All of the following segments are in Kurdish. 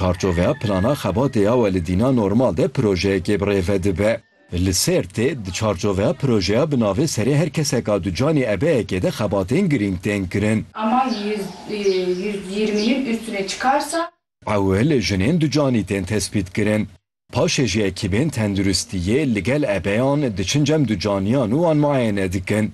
Parçoveya plana xebatê ya we li dîna normal de projeyekê bi rê ve dibe. Li Sêrtê di çarçoveya projeya bi navê Serê her keseka du canê ebeyekê de xebatên girîng tên kirin. Amaj yüzde yirmi yê üstüne çıkarsa. Ewil jinên du canî tên tespît kirin. Paşê jî ekîbên tenduristiyê li gel ebeyan diçin cem ducaniyan û wan muayene dikin.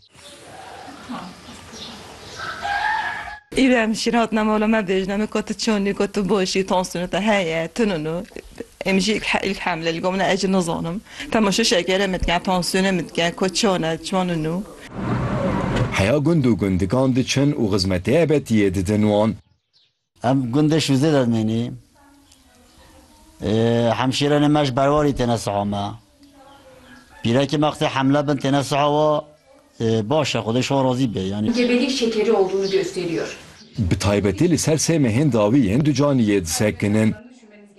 Îrem jî re hatina mala me bêjin em ê ku tu çon î, ku tu baş î, tansiyona te heye, tu nû em jî îlk hemle li gor min e ez jî nizanim. Dema şû şekere min dike, tansiyona min dike ku çon e, çon in û. Heya gund û gundikan diçin û xizmetê ebetiyê didin wan. Em gundê Şûzê de dimînî. Hemşîrenê me ji berwarî têne siha me. Pîrekê me qisê hemle bin têne siha we baş e Xwedê ji wan razî be yanî. Gebelik şekeri olduğunu gösteriyor. Bi taybetî li ser sê mehên dawî yên du canî yê disekinin.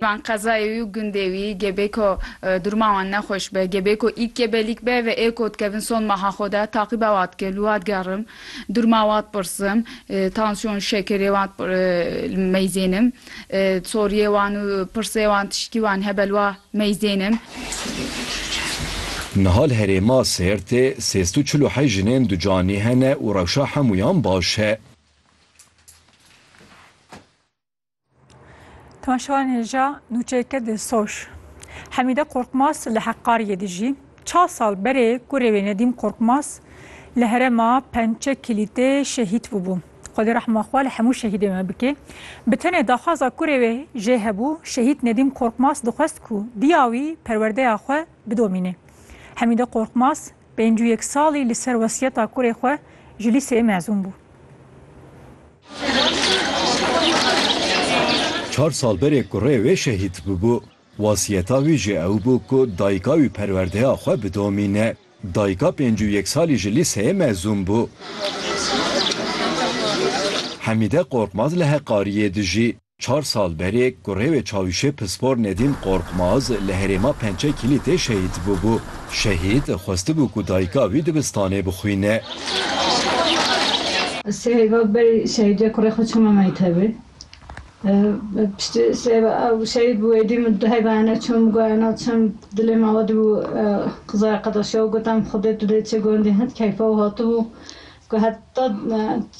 Van qezayê wî û gundê wî gêbê ku durma wan nexweş be, gêbê ku îk gêbelîk be ve ê ku dikevin son meha xwe de taqîba wa dikim, li wa digerim, durma wa dipirsim, tansyon, şekerê wan meyzênim, soriyê wan û pirsê wan tiştî wan hebe li wa meyzênim. Niha li herêma Sêrtê sêz tu çil û heyş jinên ducanî hene û rewşa hemûyan baş e. Temaşevanê ja nûçeyke di soş. Hemîde Korkmaz li Heqqariyê dijî. Çar sal berê kurê wê Nedîm Korkmaz li herêma Pençe Kilîtê şehîd bûbû. Xwedê rehma xwe li hemû şehîdên me bike. Bi tenê daxwaza kurê wê jê hebû, şehîd Nedîm Korkmaz dixwest ku diya wî perwerdeya xwe bidomîne. Hemîde Korkmaz pêncû yek salî li ser wesiyeta kurê xwe ji lîseyê mezûn bû. Çar sal berê kurê wê şehîd bûbû. Wasiyeta wî jî ew bû ku dayika wî perwerdeya xwe bidomîne. Dayika pêncî û yek salî ji lîseyê mezûn bû. Hemîde Korkmaz li Heqariyê dijî. Çar sal berê ku rêwê çavîşê pispor Nedîm Qorxmaz li herêma Pençe Kîlîtê şehîd bûbû. Şehîd xwestibû ku dayika wî dibistanê bixwîne. Sê hêva berî şehîdiyê kurê xwe çûme mektebê. Piştî sê hêva ew şehîd bû êdî min du hêva hene çûm min got ena çim dilê min awa dibû qizaya qedaşiya û gotam Xwedê tu dê çi gondî hin keyfa û hatibû Ku heta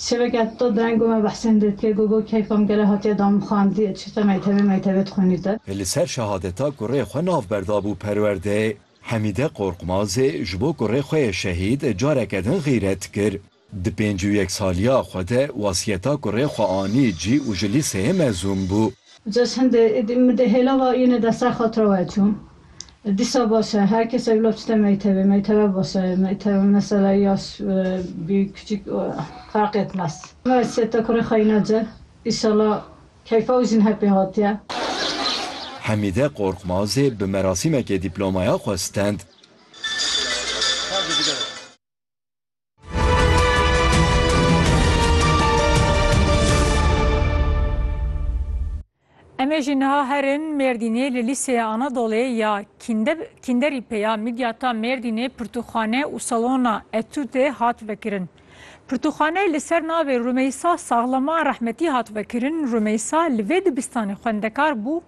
şevekê heta deng got me behsên dêtiyê got got keyfa min gelo hatiye da min xwendiyê çi te meytevê meytevê dixwînîte. Li ser şehadeta kurê xwe navber dabû perwerdê. Hemîde Qorqmazê ji bo kurê xwe yê şehîd careke din xîret kir. Di pêncî û yek saliya xwe de wasiyeta kurê xwe anî cî û ji lîseyê mezûn bû. Just hindê êdî min dê hêla va yûnê de ser xatira we çû. Dîsa baş e, her kesek bila çite meytevê, meyteve baş e, meyteve mesela yaş, bî, kiçik ferq etmez. Mehmet Sête kurê xeyna ci, îşala keyfa û jin hepê hatiye. Hemîde Qorqmazê bi merasîmekê dîplomaya xwe stend. Em ê jî niha herin Mêrdînê li Lîseya Anadolê ya Kînderî peya Midyata Mêrdînê pirtûkxane û salona etûdê hat vekirin. Pirtûkxane li ser navê Rumeysa Saxlama Rehmetî hat vekirin, Rumeysa li vê dibistanê xwendekar bû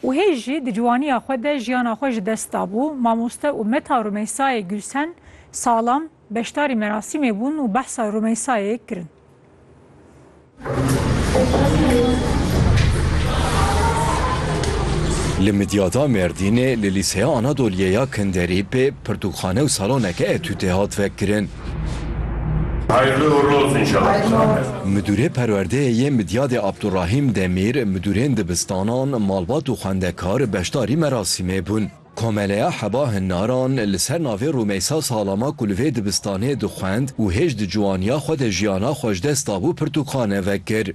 û hê jî di ciwaniya xwe de jiyana xwe ji dest dabû, mamoste û meta Rumeysayê Gulsen Salam beşdarî merasîmê bûn û behsa Rumeysayê kirin. Li Midyada Mêrdînê li Lîseya Anadoliyê ya Kinderîpê pirtûkxane û saloneke etûdê hat vekirin. Hayırlı uğurlu olsun inşallah. Midûrê Perwerdeyê yê Midyadê Abdurahîm Demîr, midûrên dibistanan, malbat û xwendekar beşdarî merasîmê bûn. Komeleya Heba Hinnaran li ser navê Rûmeysa Salama ku li vê dibistanê dixwend û hêj di ciwaniya xwe de jiyana xwe ji dest dabû pirtûkxane vekir.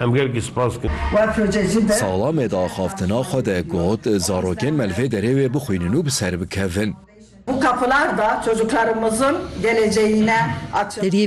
Em gelkî spas dikin. Sala me di axaftina xwe de got, zarokên me li vê derê wê bixwînin û bi ser bikevin.